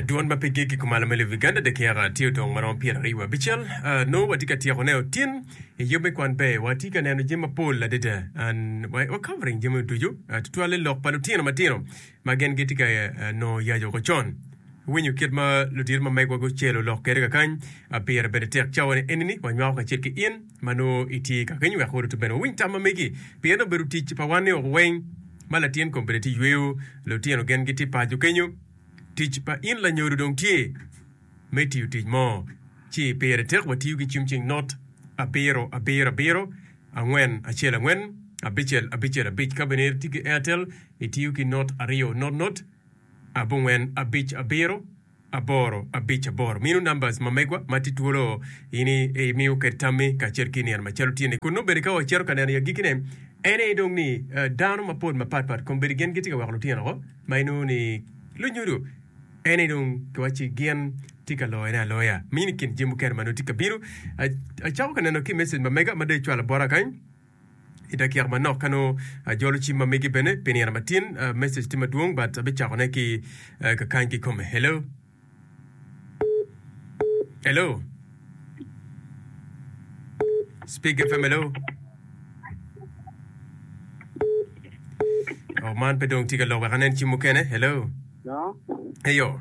Dwon ma pigi kikumalo me Lub-Uganda dakiaka tye odong maromo pyeraryo wa abicel. Ah, nongo watye ka tyeko ne otin i yub me kwan be. Watye ka neno jami mapol adada. An, wa, wa covering jami meno ducu, ah, tutwale lok pa lutino matino ma gin gitye ka, ah, nongo yac woko con. Iwinyo kit ma ludito ma megwa gucelo lok kwede kakany? Ah, pire bene tek cawa ni enini wanywako kacel ki in. ma nongo itye ka keny wek oruti bene owiny tam ma megi, pien obedo tic pa wan ni oko weng ma latin kom bene tye yweyo lutino gen gitye paco kenyo. Tic pa in lanyodo dong tye me tiyo tic mo ci pire tek watiyo ki cim cing not abiro abiro abiro angwen acel angwen abicel abicel abic ka bene itye ki Airtel itiyo ki not aryo not not abongwen abic abiro aboro abic aboro minu numbers ma megwa ma tye twolo in i miyo ked tammi kacel ki nino macalo tye ni kun nongo bedi ka wa cito ka neno i agiki ne en aye dong ni dano mapol mapat pat kom bedi gin gitye ka weko lutino woko ma inongo ni lunyodo en aye dong ki waci ni gin tye ka loyo ne aloya mini kin jami mukene ma nongo tye ka bino acako ka neno ki message ma mega ma dong icwalo bota kany. I dakika manok ka nongo ajolo cim ma megi bene pi nino matin, message tye madwong but abicako ne ki kakany ki kome. Hello. Hello. Speak FM hello. Oh, man pe dong tye ka lok wek anen cim mukene. Hello. No. Eyo.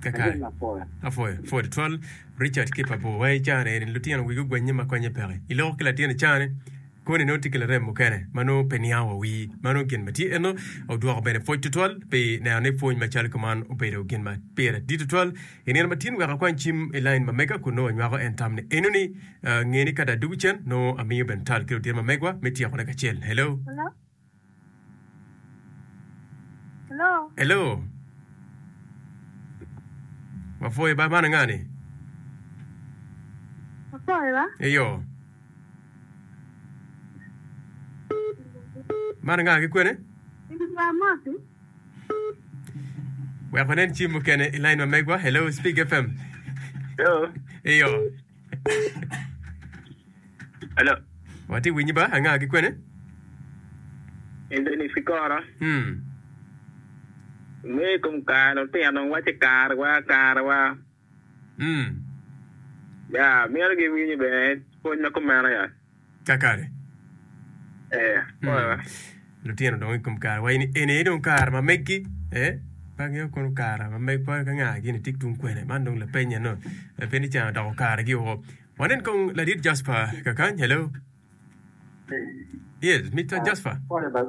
Kakayi apwoyo pwod twal Richard ki pa bwor wai caa ne lutino wigi ogwanye ma konye peke iloko ki latin caa ne koni nongo tye ki larem mukene ma nongo pe niang wa wii ma nongo gin ma tye eno odwoko bene pwoc tutwal pi neno ni pwony macalo kuman obedo gin ma pire dit tutwal I nino matin wek akwany cim i lain ma mega kun nongo anywako en tam ni eno ni nge ni kada dugu cen nongo amiyo bene tal ki lutino ma megwa me tyeko ne kacel. Hello. Hello. Hello. Hello. Wafoye ba man nga ni? Wafoye ba? Eyo. Man nga ki kwene? Ini ba moti? Wek wanen cim mukene i line ma megwa. Hello, Speak FM. Yo, Iyo. alo, Watye winyi ba anga ki kwene? Anthony Sikora, Hmm. me kom kare lutino wace karewa, karewa. Mm. Ya, myero giwinyo bene pwony ma kumeno ya. Kakare. Eh, Mm. oya. Lutino dong i kom kare wa ini eni aye dong kare ma meggi eh pa ngeyo kono kare ma meg pa ka nga gini tik tung kwene man dong lapenya no eh, pe ni can odoko kare gi woko wanen kong ladit Jasper kakany hello yes Mr. Jasper Pole bal.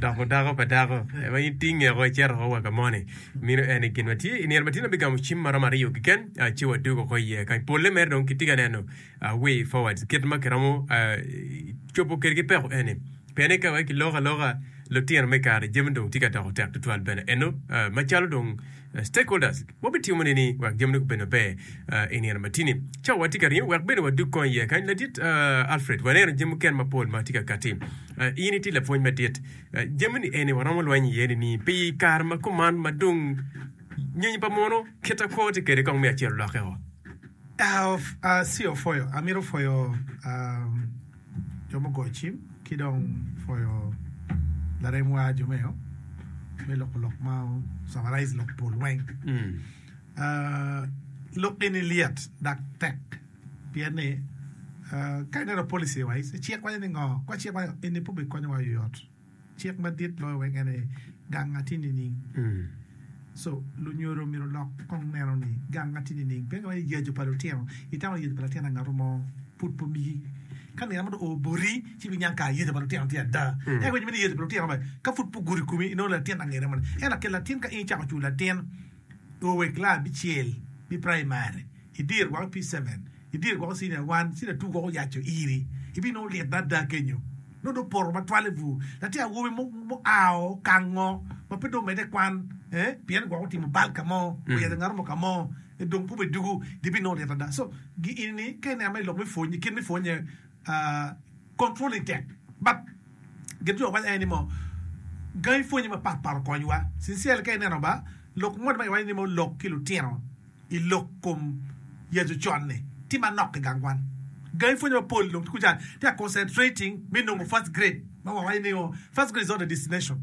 Doko dako pa dako ma in tinge oko icito oko wa ka moni. Mino en ni gin ma tye i nino ma tye na bigamo cim ma romo aryo keken ah, ci wadog oko iye kany. Polle mere dong kitye ka neno ah, way forward kit ma kiromo ah, cobo kwede ki peko eni. Pien ni ka wai kiloko aloka lutino me kare jami dong tye ka doko tek tutwal bene. Eno ah, macalo dong Stakeholders wa bitimo nini wek jamine gubed maber i nino matini? Cawa watye ka ringo wek bene wadug kong iye. Kany ladit Alfred, waneno jami mukene mapol ma tye ka katti. In itye lapwony madit. Jamini eni waromo lweny iye nini pi kare ma kuman ma dong nyonyo pa muno kit ma kwo tye kwede kong me acel olokke-o? Acio pwoyo, amito pwoyo. jo me goyo cim ki dong pwoyo laremwa jo me loko lok ma camaraiz lok pol weng. Lok eni lyet dak tek pien ni ka ineno policy wise cik waco ni ngo? Kor cik waco eni pe obikonyowa oyot. Cik madit loyo weng ene gang atir nining? Co. Lunyodo myero olok kong neno ni gang atir nining. Pien kama iyecu pa lutino, itamo ni yecu pa latin angato mo pud pe omigi. Ka nino mo dong oo boti, ci ibiniang kara yecu pa lutino tye ada. Ento Two wek laa bicel me praimari idir woko pi ceven, idir woko cinia wan, cinia tu woko oyaco iri, ibinongo lyet ada kenyo. Nongo dong opoto matwale bur. Latin awobi mo mo ao kango ma pe dong omedde kwan, eh, pien gwok otimo bal ka mo, oyaco ngato mo ka mo, eh, dong kube dugu, gibinongo lyet ada. So, gi ini, ka ineno ma ilok me pwony, kit me pwonye, ah, Kom pwonye tek bab. Gin jo waco aye ni mo gangi pwonye mapat pat okonywa. Sincerely ka ineno ba lok moni ma kiwaco ni mo lok ki lutino i lok kom Yecu ocon ni tye manok i gang kwan. Gangi pwonye mapol dong tye kuca tye ka concentrating me nongo first grade ma wawaco ni o first grade is not the destination.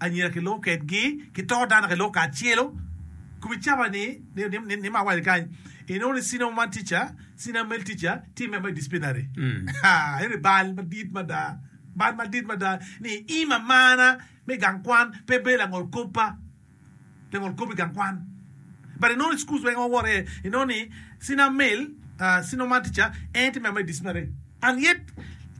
Anyira kilungo kedgi ki toko dano ka iloko kacelo kubi caba ni ni ma awali kany inongo ni senior woman teacher, senior male teacher tye member i disciplinary haa eni bal madit mada bal madit mada ni ima mana me gang kwan pe bedo langol kop pa. Pe wol kop i gang kwan. But i nongo i schools weng wawot aye i nongo ni senior male uh senior math teacher en aye tye member me disciplinary and yet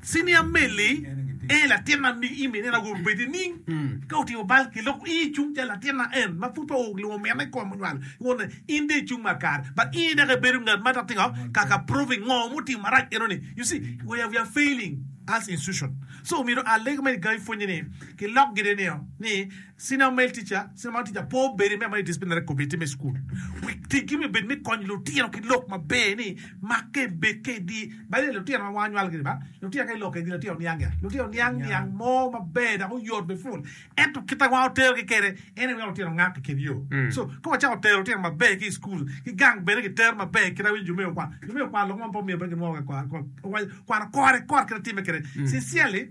senior male ni en aye latin ma i min en aye ogudo obed nining? Ka otimo bal ki loko i cung calo latin ma en ma pud pe olungo mine i kome onywalo i wone in dong i cung ma kare but in dok i bedo ngat ma dok tingo ka ka proving ngo mutimo marac eno ni you see we are we are failing as institution so myero a lego me gangi pwonye ni ki lok gire nio ni Senior Male Teacher, Senior Male Teacher po bedo i meya ma i Disciplinary Committee me Cukul. Wi tiggi me bedo me konyo lutino ki lok maber ni makke bed kedi. Bade lutino ma wang anywal gini ba lutino ka ilok kedi latin oniang gia. Lutino niang niang mo maber dok oyot me pul. Ento kit ma wan otero gi kede en aye weko lutino ngak i kin yo. So ka wacako tero lutino maber ki i cukul ki gang bene ki tero maber kit ma winyo jo me okwang jo me okwang lok mo ma pe omiyo pe ginwongo kek kwano kore kore kit ma timme kede sincerely.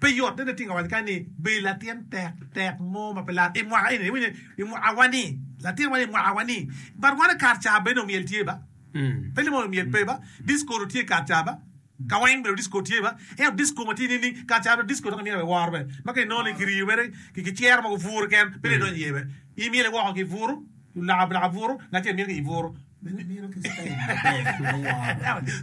Pe yot ni niting awaco kany ni, Be latin tektek mo ma pe lar i mwaka eni, iwinyo, i mwaka wa ni, latin wa ni, i mwaka wa ni? But wan i kar ca bene omyel tye ba? Pe limo omyel pe ba? Disco dong tye i kar ca ba? Kaweng bene disco tye ba? Ento disco ma tye nining? Kar ca dong disco dok imyelo i woro be, ma ka inongo ni kiriyo mere ki cero mogo buru keken, pe dong idonyo iye be. Imyele woko ki buru. Lulaka bulaka buru na tye mir ki i buru.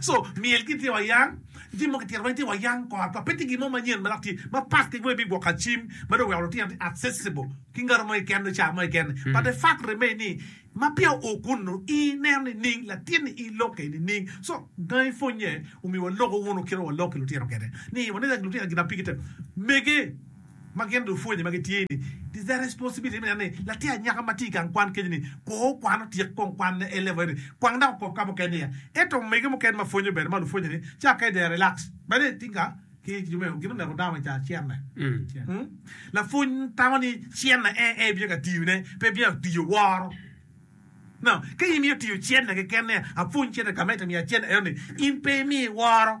So myel ki tye wa yang, jami mogo ki tito weng tye wa yang kor kor pe tye gin mo manyen ma dok tye ma part ki weng me gwoko acim ma dong oweko lutino tye accessible ki ngato mo keken nyo car mo keken but the fact remain ni ma peya o kun nu i neno ni ning latin ni i lokke ni ning so gangi pwonye omiwa loko wunu kit ma wa lok ki lutino kede ni wa neno lutino gin ma pigi tek mege ma gin dong pwonye ma gitye ni is their responsibility me neno ni latin anyaka ma tye i gang kwan kenyo ni kor okwano otyek kong kwanne A level eni kwang dok okok ka mukene niya ento omege mukene ma pwonyo bene ma lupwonye ni ca ka they are relax bene i tinga ki jo me gin oneko dano me ca cene lapwony tamo ni cene en en bino ka tiyo ne pe bino ka tiyo woro no ka in imiyo tiyo cene keken ni apwony cene ka ma ento miya cene eno ni in pe imiyo iworo.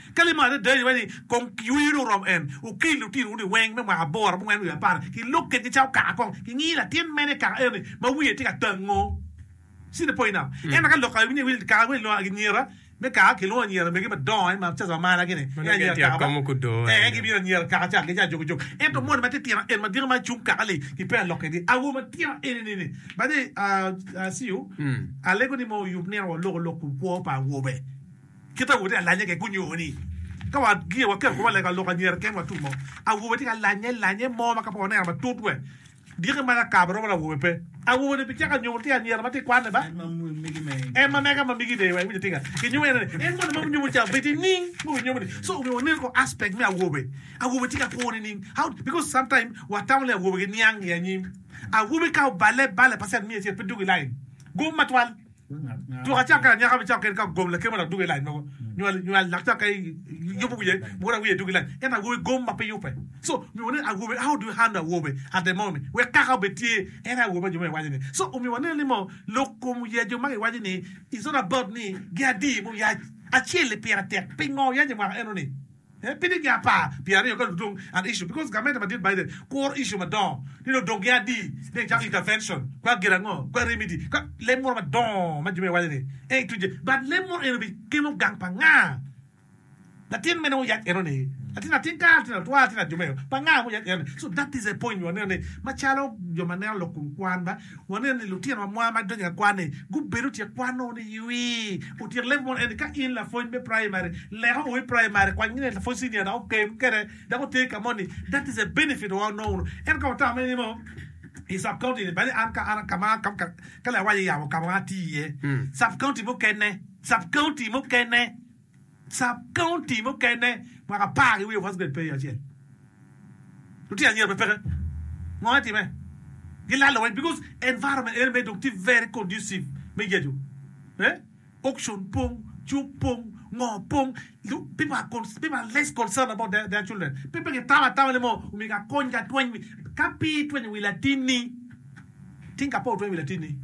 Ka limarre dai iwaco ni, Kong yweyo ni oromo en, wukel lutinowu ni weng me mwaka aboro, abongwen wiye apar, ki lok kengi cawa kaka kong kingi latin mene i kaka eno ni ma wiye tye ka tango. See the point now? Ento ka lok kare wi nyewe kaka wi lwongo anyira me kaka kilwongo anyira megi madongo ma caca ma maragi ni Meno gin tye ka komo gudo ee eno. gibino anyira kaka ca gi ca jok ki jok. Ento moni ma titino eno madito ma cung kaka li ki peya lok kedi. Awo matino eni ni ni by the way ah ah see you alego ni mo oyub nino wa oloko lok ku kwo pa awobe. Kit awobe tye ka lanye-ke gunyuto ni ka wagiyo waketo kwo walega lok anyira keken watum mo. Awobe tye ka lanye, lanye mo ma ka pe waneno matut we dyeki ma lakaba romo ni awobe pe. Awobe-ni bicako anyuto tye anyira ma tye ka kwanne ba, en ma mege ma migi deyo-wa. Iwinjo tika? Kinyuto ene ni, en moni ma wunyuto ca obed i ning ma wunyuto ni. So, omyero wanen kong aspect me awobe. Awobe tye ka kwo ni ning. How, because sometimes watamo ni awobe giniang i anyim. Awobi ka obale bale percent miya acel pe dwogo i line. Gum matwal. Tuk acakki lanyaka me cakke ka gom lakema dok dugo i lac mogo nywal nywal dok cakke yubo wiye mukene awiye dugo i lac ento awobi gom ma pe yubbe so omiwa ni awobi how do you handle awobi at the moment wek kaka obed tye en aye awobi ma jo ma iwaco ni so omiyo waneno ni moo lok kom ya jo ma giwaco ni it's not about ni gin adi ma oyac acel-li pire tek pingo oyac imwaka eno ni. En piny higni apar pye aryo ka dong gidong an issue because gamente madit Biden kuro issue madongo ni dong odong gi adi ni ecako intervention kwa gin ango kwa remedy kwa lem moro madongo ma jo me waco ni en tuje but lem moro eno bi kelo gang pa nga latin mene oyac eno ni latin atin ka latin atwa latin ajume pa nga muyac eno ni so that is a point waneno ni macalo jo maneno lok kun kwan ba Waneno ni lutino ma mwaa ma donyo i akwan-ni gubedo tye kwano ni ywi otyek level mono eni. Ka in lapwony me praimari, lek ongo i praimari, kwany gin i lapwony cinia dok otem kwede dok oteri ka moni. That is a benefit wa onongo wunu. Ento ka watamo ni nongo i sub county-ni, badi an ka an ka ma ka ka ka lawanya yabo ka ma atii iye, sub county mukene, sub county mukene, Sub-county mukene mwaka apar ki wiye first grade pe iye acel. Lutino anyira pe peke. Ngo etime? Gilalo weng because environment eni mere dong tye very conducive me yecu. Eh? Auction pong, cuk pong, ngo pong. People are, people are less concerned about their, their children. Pe pe gitamo atama ni mo omyero akony ki atweny wi. Ka pe itwenyo wi latinni. Tinka pe otweng wi latinni,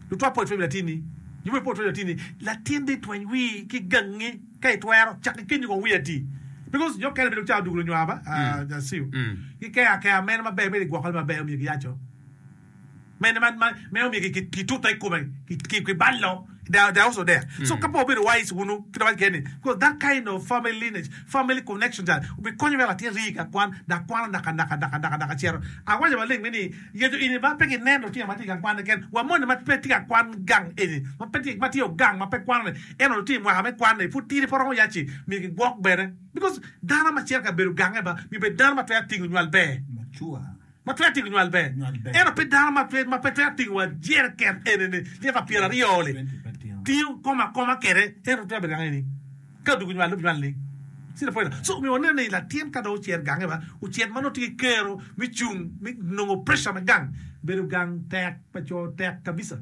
lutwa pe otweng wi latinni, jubbe pe otweng wi latinni, latinni tweny wii ki gangi ka itwero, cak ki kenyo kong wii ati because jo mukene bedo calo dugu lunywar ba I see you ki keyo akeya meno maber mere igwoko ne maber omiyo giyaco meno ma omiyo kitute ikome ki ballo. They are also there so ka pe wabedo wise wunu ki dong agen ni because that kind of family lineage family connection that obi konyo wek latin rii ka kwan dak kwano naka naka naka naka naka cito awaco maleng me ni yecu ini ma pe ki neno lutino ma tye i gang kwan keken wa moni ma pe tye ka kwan gang eni ma pe tye ma tye ogang ma pe kwano ni ento lutino i mwaka me kwan ni pud tidi pe romo ya ci myero ki gwok bene because dano ma cito ka bedo gange ba myero bed dano ma twero tingo nywal ber mature. ma twero tingo nywal ber, ento pe dano ma pe twero tingo wa jereken eni-ni lita pyera aryo-li. Tingo kom akoma kede ento twero bedo gange ni ka odwogo nywal lub nywal ni cita pwera. So omiyo waneno ni latin ka dong ocer gange ba ocit ma nongo tye ki kero me cung me nongo pressure me gang, bedo gang tek pa co tek kabisa.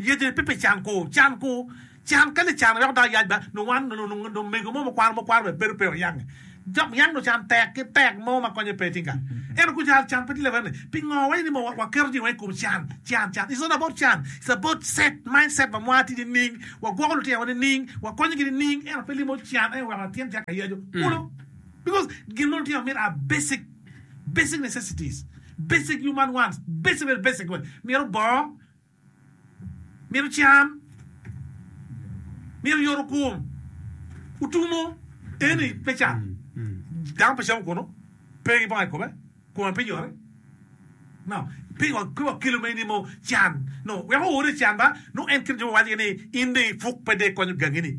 Yecone pe pi can ku can ku can kadi can weko dako yac ba nongo wan nongo omego mo mukwano mukwano bene bedo pe oyange dok yang nongo can tek ki tek mo ma konye pe tinga ento ku can can pe tye lewene pingo wa ini mowa wa keto jami wa ikom can can can it's not about can it's about set mind set ma mwaa tye nining wa gwoko lutino wa nining wa konyo gi nining ento pe limo can en weko latin caka yaco kulu because gin ma lutino mito are basic basic necessities basic human wants basic very basic myero bongo mito cam, mito yoto kom, otumo eni pe can dano pe camo kono pe kibongo aye kobe kome pe nyote no pe wa kelo ma enini mo can no weko oore can ba nongo en kit jo ma waco ni in dong ipuk pe dong ikonyo gangini.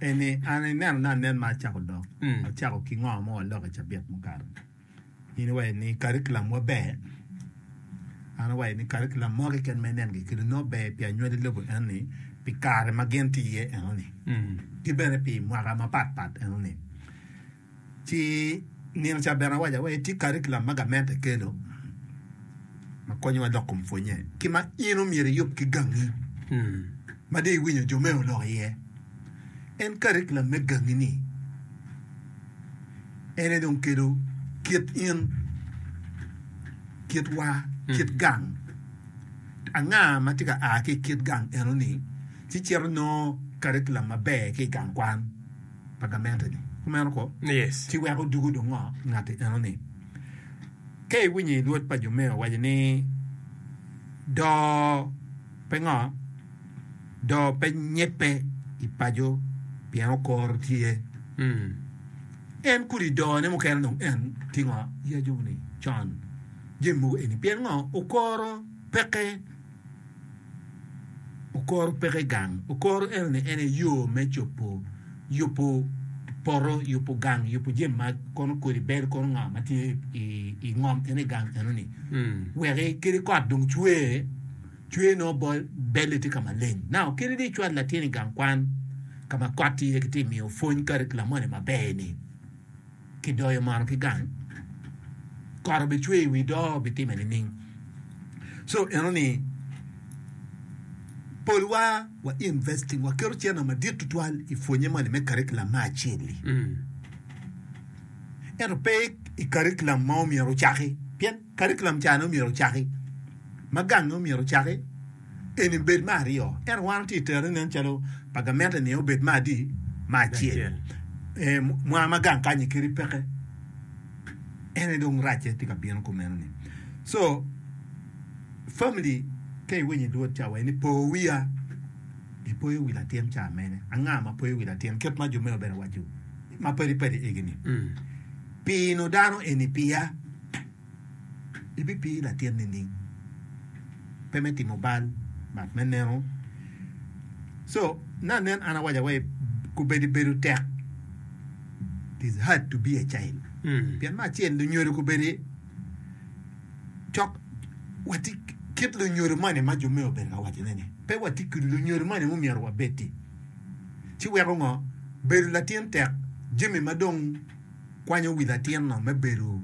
Eni, an inenona anen ma acako dok acako ki ngo mo aloko i cabit mukato. In iwaco ni curriculum wa ber, an awaco ni curriculum mo keken ma inen kekeli nongo ber pi anywali lobo enoni pi kare ma gin tye iye enoni ki bene pi mwaka mapat pat enoni. Ci nino ca bene awaco wai tye karikilam ma gament ekelo ma konyowa dok kom pwonye ki ma in omyero iyub ki gangi ma dong iwinyo jo me olok iye. En karikilam me gangi ni en aye dong kelo kit in, kit wa, kit gang. Anga ma tye ka a ki i kit gang eno ni ci cito nongo karikilam maber ki i gang kwan. pa gamente-ni. Kumeno ko, ci wek odugo dong ngo ngatti enoni. Ka iwinyo i lwod pa jo meo waco ni doo pe ngo, doo pe nyebbe i paco pien okoro tye. En kodi doo ne mukene dong en tye ngo? Yacu ni con jami mogo eni. Pien ngo? Okoro peke. Okoro peke gang, okoro enoni en aye yo me cobo yubo poto, yubo gang, yubo jami ma kono kodi bel kono ngo ma tye i ngom en aye gang enoni wek kadi kot dong cwer, cwer nongo bot belle tye ka maleng now kadi dong icwalo latin i gang kwan ka ma kot tye iye kitye ka miyo pwony kadi ki lamolle maber-ni. kidoyo malo ki gang kot obicwe i wi doo bitime nining? So eno ni polwa wa investing waketo cene madit tutwal i pwonye moni me curriculum me acel-li ento pe i curriculum ma omyero ocaki pien Karikulam cani omyero ocaki ma gange omyero ocaki eni bed me aryo, ento wan watye itere nen calo pa gamente ni obed me adi? me acel. Ee, mwaa ma gang kanyi keri peke en aye dong racce tye ka bino kumeno ni. So, family ka iwinyo i luot ca wa ni po wiya, ipoyo wi latin ca mene? Anga ma poyo wi latin? Kit ma jo mene obene waco ma padi padi egi ni, pino dano eni piya? ibipii latin nining? Pe me timo bal but me neno so na nen an awaco wai kubedi bedo tek it is hard to be a child pien me acel lunyodo kubedi cok wati kit lunyodo moni ma jo me obedo ka waco neni pe wati ki lunyodo moni mu myero wabedi ci weko ngo bedo latin tek jami ma dong kwanyo wi latinno me bedo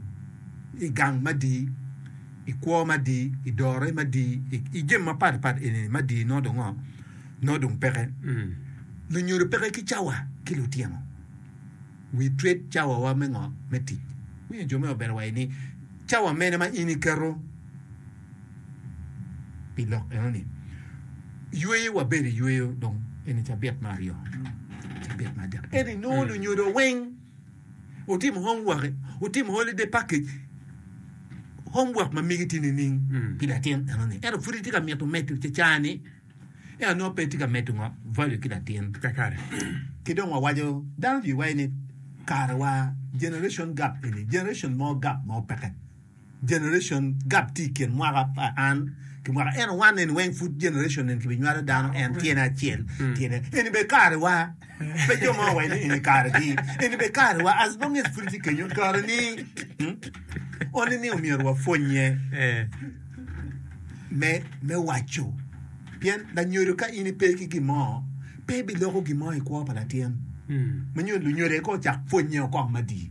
i gang madii, i kwo madii, i dore madii, i jami mapat pat eni madii nongo dong ngo? Nongo dong peke. Lunyodo peke ki cawa ki lutino. We treat cawawa me ngo? Me tic. Winyo jo me obedo wa ini cawa mene ma in iketo? pi lok enoni. Yweyo wabedo i yweyo dong eni cabit ma aryo. Cabit ma adek eni nongo mm. lunyodo weng utimo homework, utimo holiday package homework ma migi tye nining mm. pi latin enoni. Ento pud itye ka mito medo cecani eno nongo pe tye ka medo ngo value ki latin. Kakare. Ki dong wawaco dano jwi waye ni karewa generation gap eni generation mo gap mo peke. Generation gap tye i kin mwaka pa an ki mwaka ento wan eni weng pud generation eni kibinywalo dano en tyene acel tyene eni bene karewa pe jo mo waco ni eni karegi eni bene karewa as long as pud itye kenyo kareni only ni omyero wapwonye me me waco pien lanyodo ka in ipe ki gin mo pe biloko gin mo i kwo pa latin manyo lunyodo eko ocak pwonye okok madii.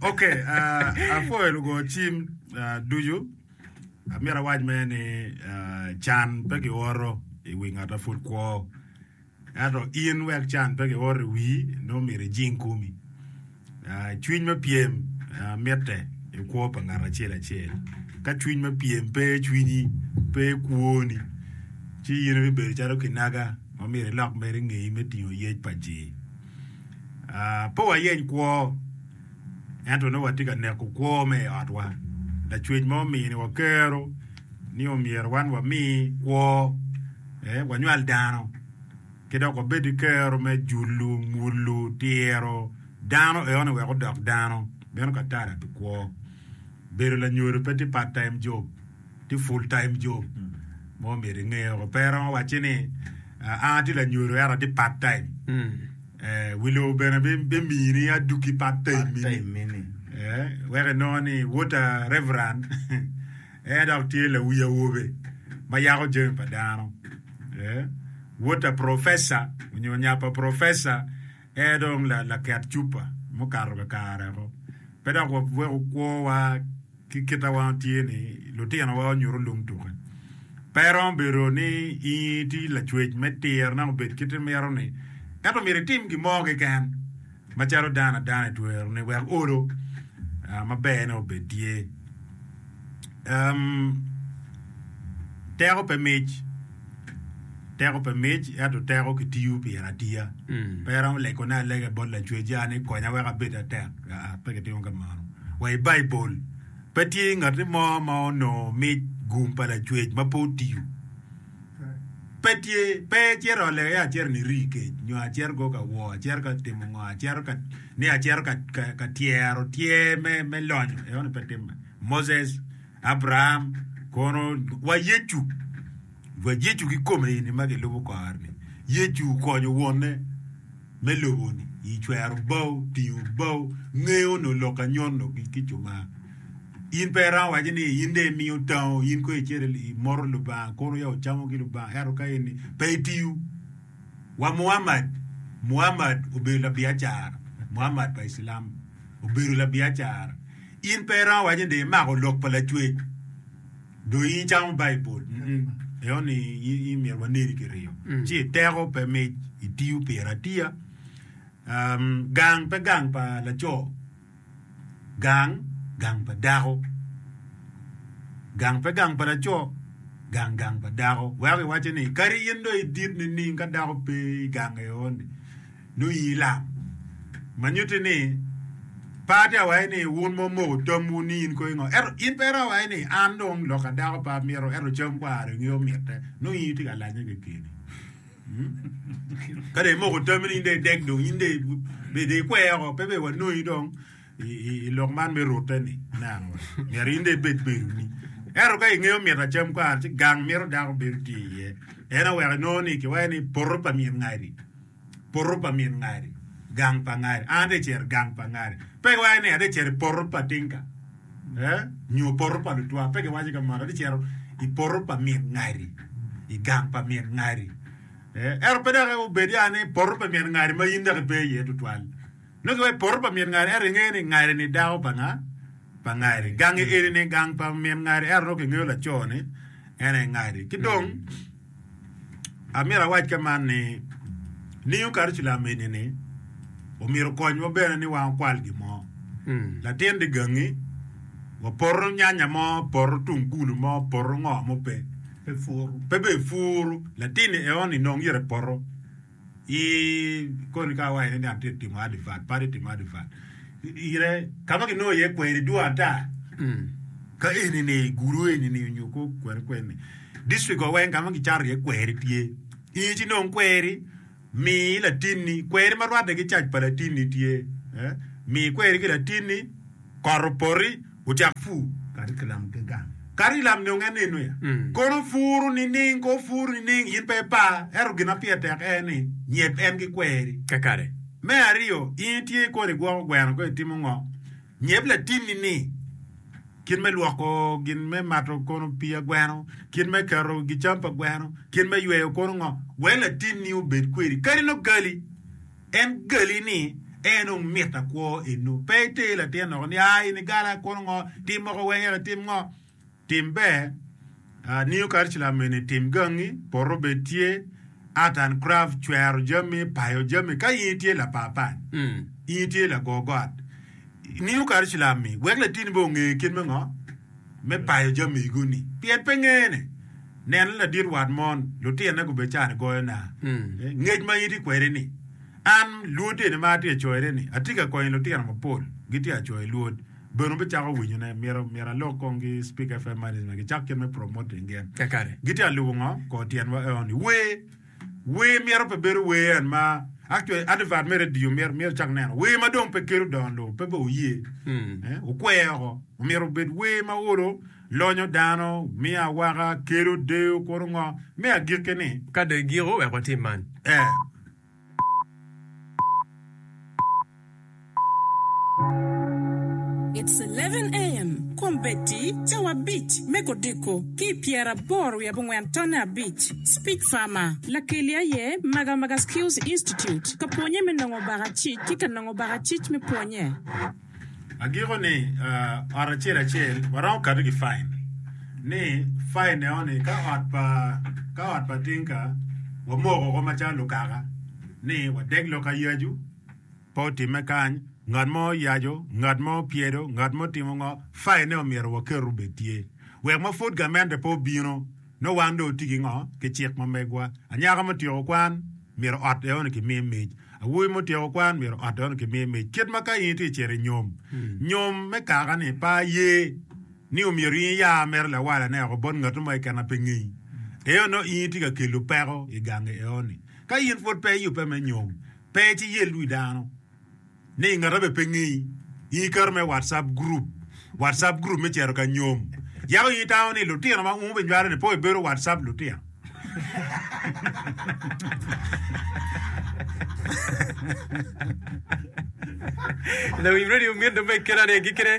ok apwoyo lugo cim ducu amyero awac me ni can pe ki oro i wi ngat ma pud kwo ento in wek can pe ki oro i wii nongo myero ijing komi Cwiny me pyem mitte i kwo pa ngat acel acel. Ka cwiny me pyem pe i cwinyi, pe i kwoni, ci in ibibedo calo kinaga ma myero ilok mere i ngeyi me tingo yec pa ji. Pe wayeny kwo, ento nongo watye ka neko kwo me i otwa. Lacwec mo omini wa kero ni myero wan wami kwo, wanywal dano. ki dok obed ki kero me julo, mulo, tiro, dano eone wek odok dano, meno ka tara pi kwo. Bedo lanyodo pe tye part time job, tye full time job ma omyero inge woko. Pe iromo wacci ni an atye lanyodo ento atye part time. Eh, wi lobo bene bi- bimiyi ni adukki part time mini. Eh, wek inongo ni wota reverend En dok tye lawi awobe ma yako jami pa dano. Wot a profesa onyo nya pa profesa en dong laket cupa mukato kakare ko. Pe dok wawek okwo wa ki kit a wan tye ni lutino wa onyuto lung tuke. Pe romo bedo ni in itye lacwec me tiro ne obed kit imito ni, ento myero itim gin mo keken. Macalo dano adano i twero ni wek olo maber ne obed tye. Teko pe mic, teko pe mic ento teko ki tiyo pire atiya. Pe iromo lego ne alega i bot Lacwecca ni konya wek abed atek. Aa, pe ki timo ka mano. Wa i Baibul, pe tye ngati mo ma onongo mic gum pa Lacwec ma pe otiyo. pe tye, pe ecito ole aye acito ni rii kec, nyo acito go ka woo, acito ka timo ngo, acito ka, ni acito ka, ka, ka tyero tyer me, me lonyo, eo ni pe timme. Moses, Abraham, kono, wa Yecu, wa Yecu ki kome eni ma gilubo kore-ni. Yecu okonyo Wonne me lobo-ni i cwero bao, tingo bao, ngeyo nyo lok anyono ki, ki cuma. In pe iromo waco ni in dong imiyo tango, in kono icito imoto Lubanga, kono ya wucamo ki Lubanga, ento ka in ni pe itiyo. Wa Muammad, Muammad obedo labiacara, Muammad pa Iclam obedo labiacara. In pe iromo waco ni dong imako lok pa Lacwec, dong in icamo Baibul. Mm-mm. Eo ni in, in myero waneni kiryo. Ci iteko pe mic, itiyo pire atiya. Um, gang pe gang pa laco. gang, gang pa dako. Gang pe gang pa laco, gang gang pa dako. Weko kiwaco ni kadi in dong idit nining ka dako pe i gang eoni nongo in ilam. Ma nyutti ni pe atye ka waco ni wun ma wumoko tamwu ni in kong ingo. Ento in pe iromo waco ni an dong loka dako pe amito ento cam kwara dong ngeyo mitte. Nongo in itye ka lanye kekeni. Ka dong imoko tammi ni in dong idek dong in dong ikwe oko pe dong wanongi dong i lok man me rute-ni nanga myero in dong ibed bedoni. Ento ka ingeyo mito acam kwara ci gang mito dako bedo tye iye. En oweko inongo ni kiwaco ni poto pa min ngadi. Poto pa min ngadi. Gang pa ngadi. An ate cero gang pa ngadi. Pe kiwaco ni ate cero poto pa tinka. eh, nyo poto pa lutwa, pe giwaco ka mono, gicito i poto pa min ngari, i gang pa min ngari. Eh, ento pe dok obed ya ni poto pa min ngari ma in dok ipe iye tutwal. Nongo giwaco poto pa min ngari, ento ingeyo ni ngari-ni dako pa nga? Pa ngari. Gangi eni-ni gang pa min ngari, ento nongo kingeyo laco-ni en aye ngari. Ki dong, Amito awac ke man ni, ningo Karuculam eni-ni omyero okonywa bene ni wan wukwal gin mo? Latin di gangi wapoto nyanya mo, poto tungulu mo, poto ngo mo pe, pe befuru latin-ni eo-ni nongo yero epoto. I koni ka awaco ni atye ka timo adivert, padi timo adivert. Ire, ka ma kinongo iye kweri dwong ata ka eni-ni, i gulu eni-ni nyo kor kwene kweni, dictricwa weng ka ma kicato iye kweri tye. In ci nong kweri, mi latinni, kweri ma rwatte ki cac pa latinni tye, mi kweri ki latinni, kot opoti. ocak pur kadi ki lam ki gang, kadi i lam nyo ngene nyo ya, kono puru nining? Kono puru nining? In pe ipar, ento gin ma pire tek en ni, nyep en ki kweri. Kakare. Me aryo, in itye ikolo igwoko gweno kong itimo ngo? Nyep latinni ni, kit me lwoko gin me mato kono pii a gweno, kit me keto gicam pa gweno, kit me yweyo kono ngo, wek latinni obed kwedi, kadi nongo gali. En gali ni, En dong mit akwo enu. Pe iter latin loko ni, Aa in igala, kono ngo? Tim moko weng eka itim ngo? Tim ber. Uh, New Curriculum eni, tim gangi, poto bed tye, Art and Craft, cwero jami, payo jami, ka in itye lapapal, mm. in itye lago got, New Curriculum ni, wek latini be onge kit me ngo? Me payo jami gu ni. Pien pe ngene. Nen, ladit wat mon, lutinne gubecani goyo naa. Ngec ma in itye kwede-ni, an, Lwodeni ma atye ka coyone-ni, atye ka konyo lutino mapol, gitye ka coyo Lwod. Bene wubicako winyone. Myero, myero alok kong ki Speak FM management gicak kit me promoting gen. Kakare. Gitye ka lubo ngo? Kor tyenwa eo-ni. Wer, wer myero pe bedo wer en ma, actually, advert me radio myero, myero icak neno wer ma dong pe kelo dongo lobo, pe be wuye. Eh, wukwer oko. Omyero obed wer ma olo. Lonyo dano, miyo awaka, kelo deyo, kuru ngo. Me agikki ni. Ka dong igiko, wek watim man. E. It's eleven AM, Kombeddi cawa abic me kodiko ki i pyeraboro wiye abongwen tonne abic, Speech Farmer, Lakeli aye Maga Maga Skills Institute ka pwonye me nongo baka cic ki ka nongo baka cic me pwonye. Agiko ni ot acel acel waromo kato ki fain ni fain ne oni ka ot pa ka ot pa tinka wamoko ko macalo lukaka ni wadeg lok ka yacu pe otime kany ngat mo yaco ngat mo pyedo ngat mo timo ngo fain ne omyero waketo bed tye wek ma pud gamente pe obino Nongo wan dong watye ki ngo? Ki cik ma megwa. Anyaka mutyeko kwan, myero ot eno kimi mic. Awobi mutyeko kwan, myero ot eno kimi mic. Kit ma ka in itye cito i nyom, nyom me kaka ni pe aye ni omyero in iya mere lawalane oko bot ngatu mo keken ma pe ngeyi, eno nongo in itye ka kelo peko i gangi eno ni. Ka in pwod pe iyubbe me nyom, pe ci yel wi dano. Ni i ngata be pe ngeyi. I iketo me WhatsApp group, WhatsApp group me cito ka nyom, yako i tawo ni lutino ma umu be nywalo ni po i bedo WhatsApp lutino. Lawiny Radio Mito me kela ne gi kene.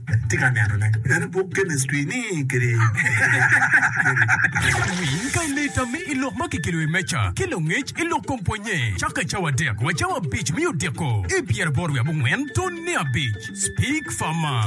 Atye ka neno ne en i buk chemistry ni kiri kiri. Winy pa i leta me i lok ma kikelo i meca ki langec i lok kom pwonye cake cawa adek wa cawa abic me odeko i pyeraboro wiye abongwen tone abic. Speak farmer.